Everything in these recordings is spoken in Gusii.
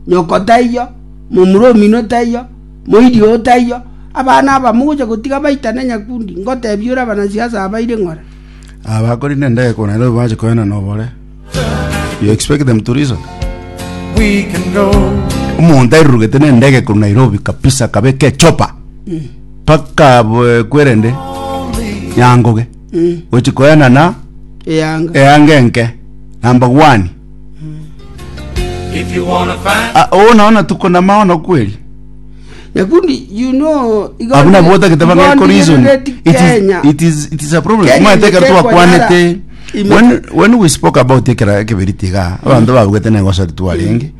Nyoko taiyo, momura ominwe taiyo, moiri oo taiyo, abana aba mogocha gotiga baitane nyakundi, ngoteebia ore abanasiasa abaire ng'ora. Abakori nendege korwa Nairobi bache koenana nobore. You expect them to reason? Omonto airurugete nendege korwa Nairobi kabisa akabeka echopa mpaka bwe- kwerende nyangoge gochi koenana Eyanga. eanga enke namba gwani If you wanna find Ah, oo nao natuko namao nokweri Nyakundi, you know, igo abu nabo otagete igo bageko reason ndigirereti it is, Kenya. it is, it is a problem Kenya mwaete ekero nigekwa twakwanete yara. Ime- when, when we spoke about ekera ekeberiti iga abanto babugete negosari twarenge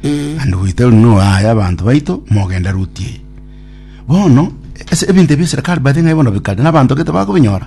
and we tell no aya abanto baito mogenda ruti eye bono ase ebinto ebia serikali bathe ng'ai bono bikare na abanto gete bakobinyora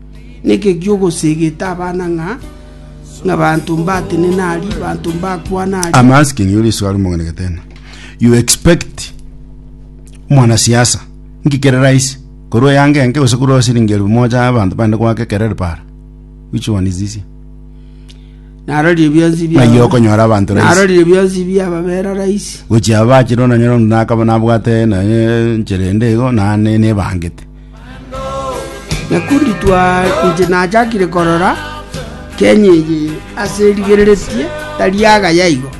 Neke gi'ogosegeta abana ng'a abanto mbatenena ari, abanto mbakwana ari. I'm asking you this swali mong'ina Getena. You expect mwanasiasa nki kere rahisi korwa eyanga enke gose korwa siringi elfu moja ya abanto bande goaka ekereri para? Which one is easier? Narorire bionsi bia Ng'ai okonyora abanto rahisi? Narorire bionsi bia ababera rahisi. Gochia abachire onanyora onde nakaba nabwate naye enchera ende igo nane nebangete. Nyakundi twa inche nachakire korora Kenya eye ase erigereretie tari agaya igo.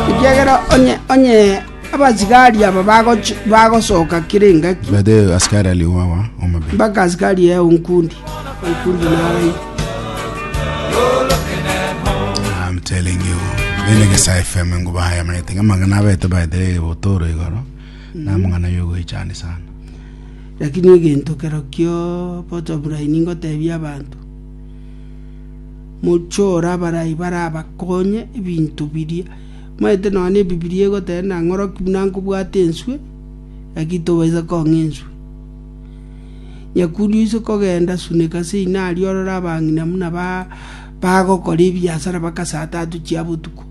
Ekiagera onye onye abasigari aba bagochi bagosoka kere engaki By the way, askari aliwa wa Omabeni. mpaka asikari eye onkundi onkundi naye I'm telling you. Bene gesa FM ngo bahaya manete ngama ngana bete by the way botoro igoro. namang'ana y'ogoechandia sana. Lakini egento kerokio bottom line ingotebia abanto, mochore abarai barabakonye ebinto biria. Omanyete nonya ebibilia egoteba ng'a ng'oroki buna nkobwate enswe, lakini tobaisa kong'a enswe. Nyakundi oise kogenda suneka ase inari orore abang'ina buna ba- bagokora ebiasara bagasata atochia botuko.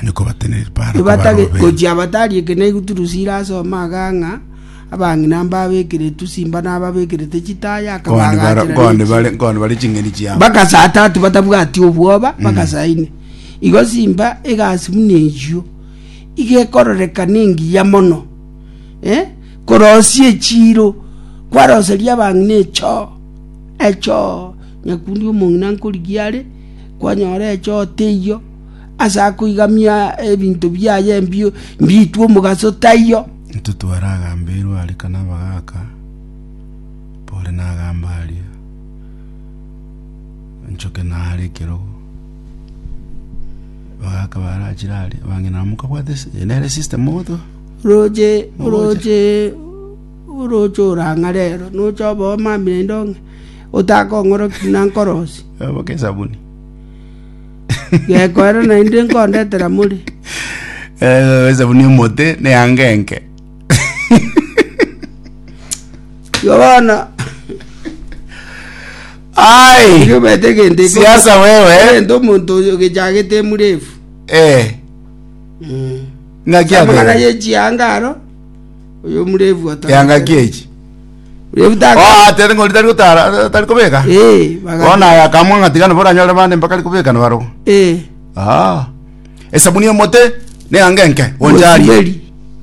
Onye kobatenereria para Nibatage kobarobera. gochia abatari ekeneegu Turusila asome aga ng'a abang'ina mbabekereti simba na ababekerete chitaya Nkone bara- akabagaachera ne nkone chi- bare- nkone bare ching'eni chiabo. bakasata ati batabwati obwoba bakasaine igo simba egasi buna eyio iga ekororekana engiya mono eh, korosia echiiro kwaroseria abang'ina echoo echoo nyakundi omong'ina nkorigia are kwanyora echoo teiyo. ase akoigamia ebinto biaye ebibe mbitwe omogaso, taiyo? Intwe twaragambeirwe are kana abagaaka, mpore nagambe aria, nchoke naare ekerogo. Abagaaka barachire aria, abang'ina aba mokabwate ase- eye nere esiste mogotoa. Oroche, oroche, oroche orang'are ero, noche oboo mamire indong'e, otakong'oroki na nkorosi. Oboke esabuni. gekoera naende nkondetera more Eh, esabuni emote ne yanga enke igo bono ai igo bete gende siasa wewe gende omonto oyo gechagete emurefu eh ngaki amang'ana abeire. yechianga aro oyo omurefu ata Engaki echi. murefu taka Oh, atere ng'ori tari gotara, tari kobeka. eh baga Bono aya akamwa ng'a tiga nabo oranyore bande mpaka ari kobeka nabarobwo. eh Ah. Esabuni y'omote neanga enke oncharie. Osiberi.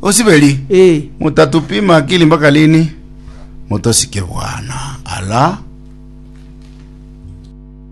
Osiberi. eh Mutatupima akili mpaka lini? Mutosike bwana. Ala.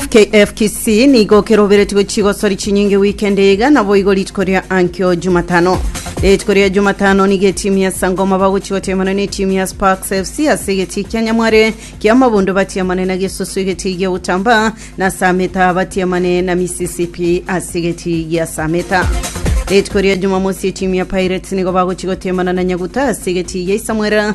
FKF Kisii nigo keroberetie gochia igosori chinyinge weekend eye iga naboigo rituko ria ankio Jumatano. Rituko ria Jumatano nigo etimu ya Sangoma bagochia gotemana na etimu ya Sparks FC ase egetii kia Nyamware kia Mabondo batiamane na Gesusu egetii gia Utamba na Sameta batiamane na Mississippi ase egetii gia Sameta. Rituko ria Jumamosi etimu ya Pirates nigo bagochia gotemana na Nyaguta ase egetii gia Isamwera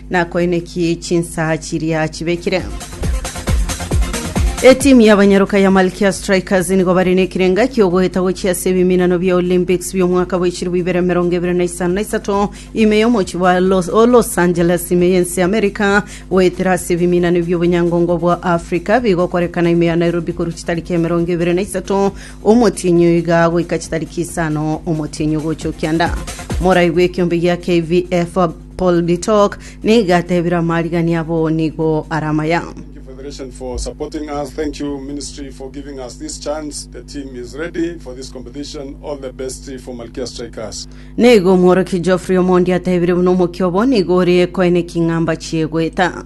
Nakoine ki chinsa chiria chibekire? Etimu y'abanyaroka ya Malkia Strikers nigo bare nekirenga kiogoeta gochia ase ebiminano bia Olympics bi'omwaka bwa echirobu ibere emerongo ebere na isano na isato ime y'omochie bwa Los, o Los Angeles ime y'ense ya America goetera ase ebiminano bi'obonyangongo bwa Africa bigokorekana ime ya Nairobi korwa chitariki emerongo ebere na isato omotienyi oyo iga goika chitariki isano omotienyi ogocha okianda morai bw'ekiombe gia KVF Paul Bitok nigo atebire amarigani abo nigo are amaya. Nigo omworokia Geoffrey Omondi atebire buna omokia obo nigo ore koe ne king'amba chie goeta.